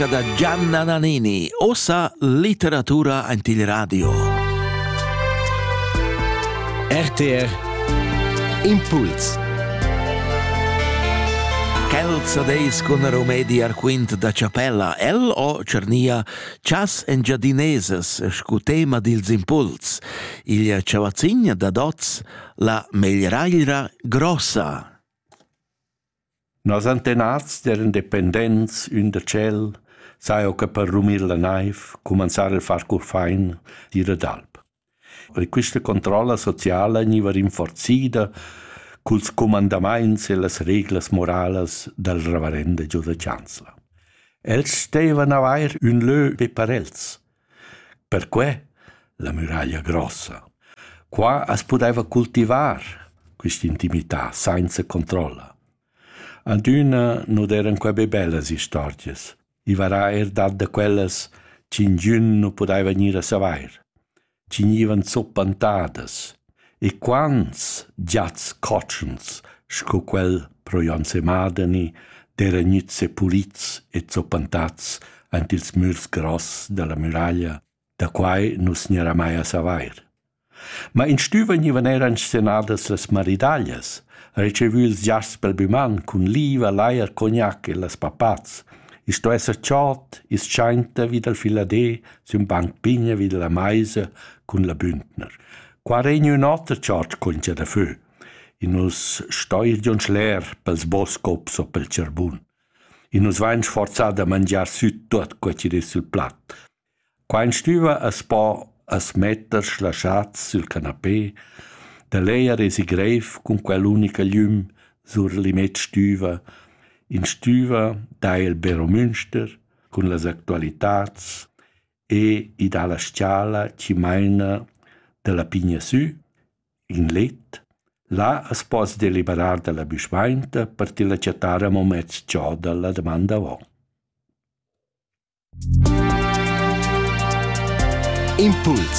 musica da Gianna Nannini, ossa litteratura ein il radio. RTR Impuls Celza deis cun romedi ar quint da Chapella, el o cernia chas engiadineses scu tema dils impuls, il chavazigna da dots la meglieraglia grossa. Nos antenats eran dependents ün da tschel, saja que per rumir la naiv, cumanzar il far curfain, ir ad alp. E quista controlla sociala gniva rinforzida culs cumandamaints e las reglas moralas dal reverenda giù da chanzla. Els stevan avair ün lö be per els. Perquei la muraglia grossa. Qua as pudeva cultivar quist'intimità sainza controlla. Adüna nu d'eran que be bellas istorgias. I varà eir dat da quellas ch'ingün nu pudaiva gnir a savair. Chi gnivan zuppantadas, E quants giats cotschens sco quel pro Jon Semadeni d'eira gnüts sepulits e zoppantats aint ils mürs gross dalla muraglia, da quai nu's gnarà mai a savair. Ma in stüva gnivan eir inscenadas las maridaglias, retschevü ils giasts pel büman cun liva, lajer, cognac e las papats. I sto esser chod, ischainta vi dal filadé sün banc pigna vi dalla maisa cun la bündner. Qua regn ün oter tschartsch contscha da fö. I nus stoir giun schler pels boscops o pel tscharbun. I nus vain sforzà da mangiar süt tuot co chi dess sul plat. Qua in stüva as po as metter slasciats sül canapé, da lejer esi greiv cun quell'unica glüm sur l'immet stüva, in stüva da il Bero Münster, cun las actualitads e i dà la s-chala chi maina da la pigna sü in let. Là as poss deliberar da la büschmainta per tilla chattar amo mez giò da la daman davo. Impuls